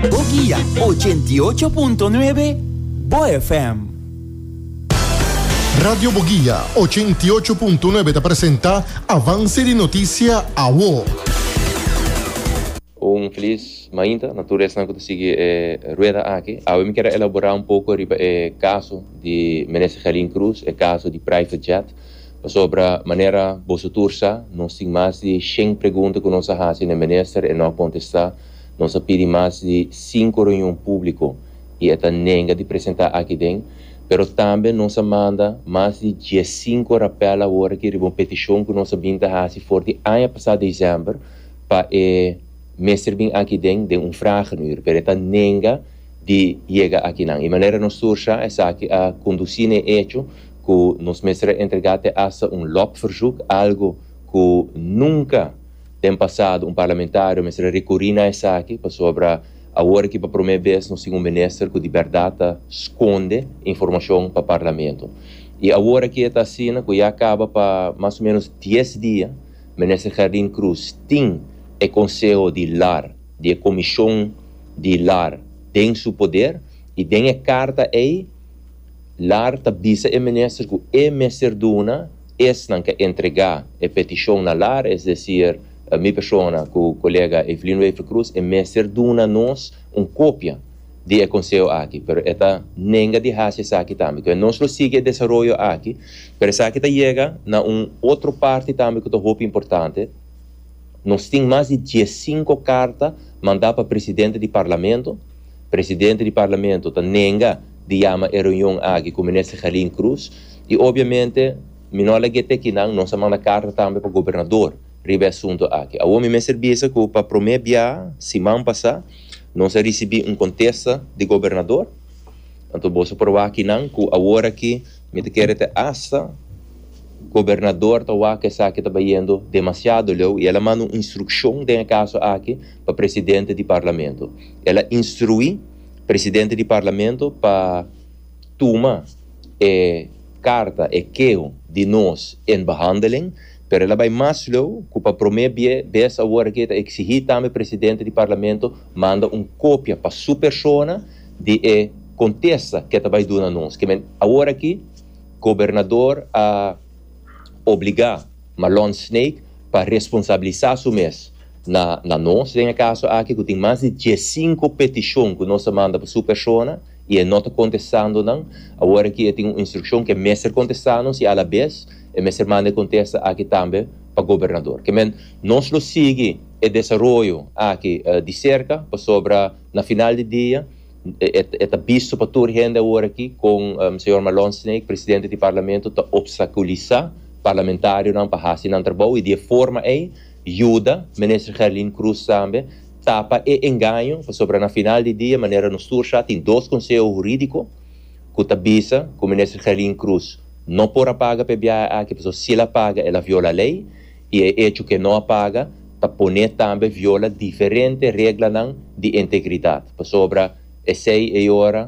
Bo guia ochenta i ocho punto nuebe, Bo FM. Radio Boguia ochenta i ocho punto nuebe ta presenta Avance di Noticia Awo. Un feliz mainta na tur esnan cu ta sigui e rueda aki. Awe mi quier a elabora un poco riba e caso di Minister Gelin Cruz, e caso di private jet. Pasobra manera boso tur sa, nos tin mas di shen pregunta cu nos a haci na e Minister, e no a contesta. Nos a pidi mas di sinku reunion públiko i e ta nenga di presentá akiden, pero tambe nos a manda mas di diesinku rapèl awor aki riba un petishon ku nos a bin ta hasi for di aña pasá desèmber pa e mester bin akiden den un fragen uur, pero e ta nenga di yega akinan. E manera nos sursa esaki a kondusí na e echo ku nos mester a entregá te asta un lobverzoek, algu ku nunka. Den pasado un parlamentario mester a rikuri na esaki pasobra awor aki pa promé bes nos tin un minister ku di bèrdat ta skonde informashon pa parlamento. I awor aki e ta asina ku ya kaba pa mas o ménos dies dia minister Gerdin Cruz tin e konseho di lar, di e komishon di lar den su poder i den e karta ei lar ta bisa e minister ku e mester duna esnan ka entregá e petishon na lar, es desir, mi persona ku kolega Evelyn Wever Croes, e mester duna nos un kopia di e konseo aki, pero e ta nenga di hasi esaki tambe. Kue nos lo sigui e desaroyo aki, pero esaki ta yega na un otro parti tambe ku ta hopi importante, nos tin mas di dies sinku karta mandá pa presidente di Parlamento, presidente di Parlamento ta nenga di yama e reunion aki ku Minister Gelin Croes, I obviamente mi no a lag'é te kinan, nos a manda carta tambe pa gobernador riba e asunto aki. Awor mi mester bisa cu pa prome bia siman pasá nos a ricibi un contesta di gobernador. Anto boso proba kinan cu awor aki mi ta kere te hasta gobernador ta wak esaki ta bayendo demasiado leu i el a manda un instruccion den e caso aki pa presidente di parlamento. El a instrui presidente di parlamento pa. tuma e karta, e keho di nos en behandeling, pero el a bai mas leu ku pa promé bie bes awor aki e ta eksigí tambe presidente di Parlamento manda un kopia pa su persona di e kontesta ke ta bai duna nos. Kimen awor aki gobernador a obligá Malon Snake pa responsabilisá su mes na na nos den e kaso aki ku tin mas di diesinko petishon ku nos a manda pa su persona. y e no ta contestando nan, awor aki e tin un instruccion ke mester contesta nos y a la bes e mester manda e contesta aki tambe pa Gobernador. Ke men nos lo sigui e desaroyo aki di cerca pasobra na final di dia e ta bisto pa tur hende awor aki con Señor Malone Snake, Presidente di Parlamento, ta obstaculisa Parlamentarionan pa haci nan trabou y di e forma ey yuda Minister Gerlin Croes tambe Tapa e engaño, pasobra na final di dia, manera nos tur sa, tin dos konseho hurídiko ku ta bisa ku Minister Gelin Cruz no por a paga pa e biaha aki pasobra si el a paga el a viola lei i e echo ku e no a paga ta pone tambe viola diferente reglanan di integridat. Pasobra esei e ora.